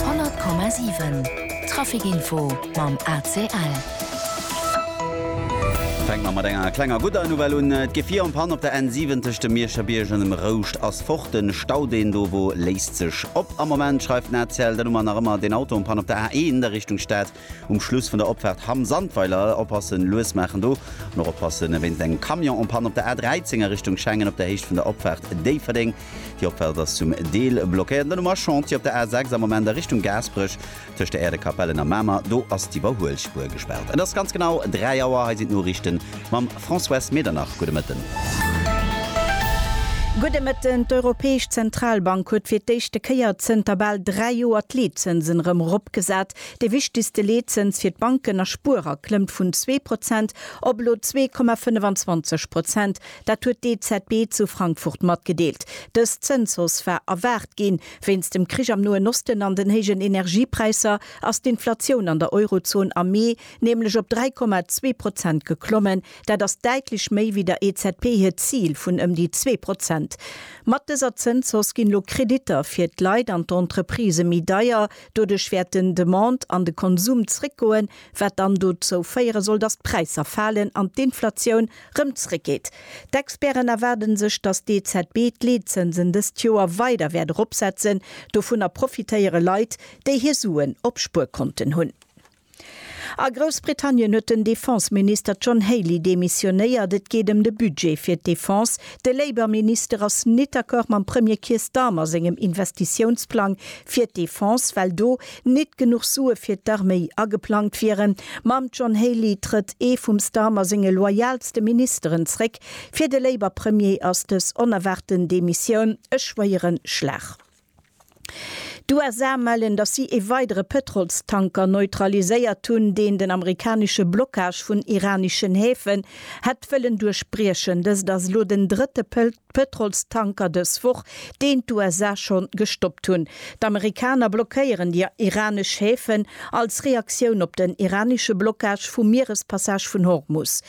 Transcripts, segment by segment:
Honnert Komma siwen, Trafikinfo mam ACL. Fänke mer mat enger klenger gudder Nouvelle un, Et geet vir an Panne op der N7 tëscht dem Mierscher Bierg an dem Rouscht. Ass fort den Stau deen do wor, léisst sech. Op Am Moment schreift den ACL den Nummer nach ëmmer den Auto um Panne op der A1 a Richtung Stad. Um Schluss vun der Opfaart Hamm Sandweiler oppassen, lues maachen do. An och oppasse wéinst engem Camion um Panne op der A13 a Richtung Schengen op der Héicht vun der Opfaart Déifferdeng. Déi Opfaart ass zum Deel blockéiert. Den Nummer Chantier op der A6 am Moment a Richtung Gaasperech. tëscht der Äerdekapellen a Mamer, do ass d'Iwwerhuelspuer gespaart. Et ass ganz genau 3 Auer, hei sinn d'Noriichten mam Françoise Medernach. Gudde Mëtten. Gudde Mëtten. D'Europäesch Zentralbank huet fir d'éischte Kéier zënter bal 3 Joer d'Leetzënsen erëm eropgesat. Dee wichtegste Leetzëns fir d'Banken a Spuerer klëmmt vun zwee Prozent op elo zwee Komma 25 Prozent. Dat huet d'EZB zu Frankfurt matgedeelt. Dës Zënshausse war erwaart ginn. Wéinst dem Krich am Noen Osten an den héijen Energiepräisser ass d'Inflatioun an der Eurozon am Mee nämlech op 3,2 Prozent geklommen. Dat ass däitlech méi wéi der EZB hiert Zil vun ëm déi zwee Prozent. Mat dëser Zënshausse ginn elo Kreditter fir d'Leit an d'Entreprisë méi deier. Doduerch wäerten d'Demande an de Konsum zréckgoen, wat dann dozou féiere soll, datt d'Präisser falen an d'Inflatioun rëm zréckgeet. D'Experten erwaarde sech, datt d'EZB d'Leetzënsen dëst Joer weider wäert eropsetzen. Dovunner profitéiere Leit, déi hir Suen op Spuerkonten hunn. A Groussbritannien huet den Defense-Minister John Healey demissionéiert. Et geet ëm de Budget fir d'Defense. De Labour-Minister ass net d'accord mam Premier Keir Starmer sengem Investitiounsplang fir d'Defense, well do Nit genuch Sue fir d'Arméi ageplangt wieren. Mam John Healey trëtt ee vum Starmer senge loyalste Ministeren zréck. Fir de Labour Premier ass dës onerwaarten Demissioun e schwéieren Schlag. D'USA mellen, datt si ee weidere Pëtrolstanker neutraliséiert hunn, deen den amerikanesche Blockage vun iraneschen Häfen hätt wëllen duerchbriechen. Dëst ass elo den drëtte D'Pëtrolstanker dës Woch, deen d'USA schonn gestoppt hunn. D'Amerikaner blockéieren déi iranesch Häfen als Reaktioun op den iranesche Blockage vum Mierespassage vun Hormus.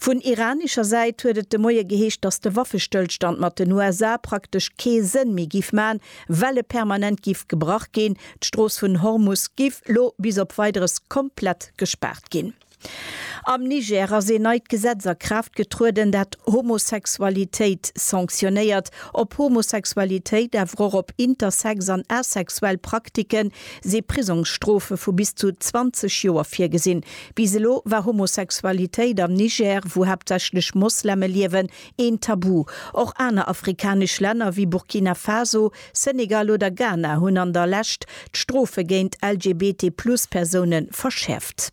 Vun iranescher Säit huet et de Moie geheescht, datt de Waffestëllstand mat den USA praktesch kee Sënn méi giff man, well e permanent giff gebrach ginn. D'Strooss vun Hormus giff lo bis op Weideres komplett gespaart ginn. Am Niger ass een neit Gesetz a Kraaft getrueden, dat Homosexualitéit sanktionéiert. Op Homosexualitéit, awer och op intersex an asexuell Prakticke si Prisongsstrofe vu bis zu 20 Joer virgesinn. Bis elo war Homosexualitéit am Niger, wou haaptsächlech Mosleme liewen, een Tabu. Och aner afrikanesch Länner wéi Burkina Faso, Senegal oder Ghana hunn an der Lescht d'Strofe géint LGBT-Plus-Persoune verschäerft.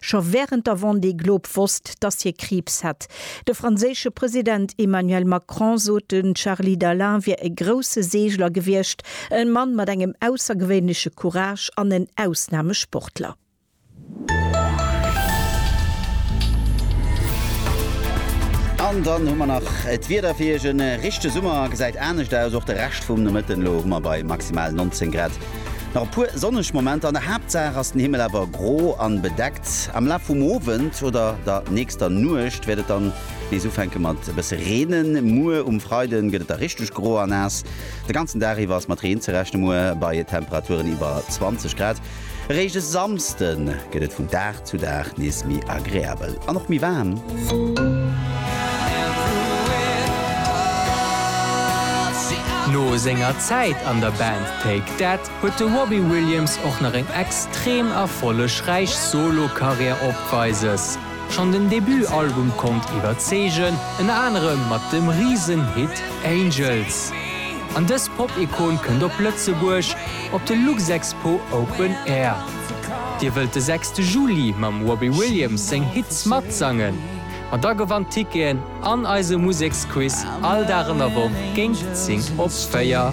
scho wärend der Vendée Globe wosst, dass hie Kriibs hätt. De franséische President Emmanuel Macron sot, de Charly Dalin wier e grousse Seegler gewiescht, e Mann mat engem aussergewéinleche Courage an en Ausnamesportler. An dann hu mer nach d'Wieder fir Iech. E richtege Summer gesäit anescht aus, och de Rescht vum Nomëtten. Elo hu mer bei maximal 19 Grad. Nach e puer sonneg Momenter, an der Haaptsaach ass den Himmel awer gro an bedeckt. Am Laf vum Owend oder der nächster Nuecht wäert et dann nees ufänken mat e bësse reenen. Muer um Freiden gëtt et da richteg gro a naass. De ganzen Dag iwwer ass mat Reen ze rechnen, muer bei Temperaturen iwwer 20 Grad. Eréischt e Samsden gëtt et vun Dag. Zu Dag nees méi agreabel an och méi waarm. No senger Zäit an der Band Take That huet de Robbie Williams och nach eng extrem erfollegräich Solo-Karriär opweises. Schonn den Debut-Album konnt iwwerzeegen, ënner anerem mat dem Risen-Hit Angels. An dës Pop-Ikon kënnt op Lëtzebuerg op de Luxexpo Open Air. Dir wëllt de sechste Juli mam Robbie Williams seng Hits matsangen? Ma da gewannt Ticketen an eise Museksquiz all Dag an der Woch géint zéng op véier.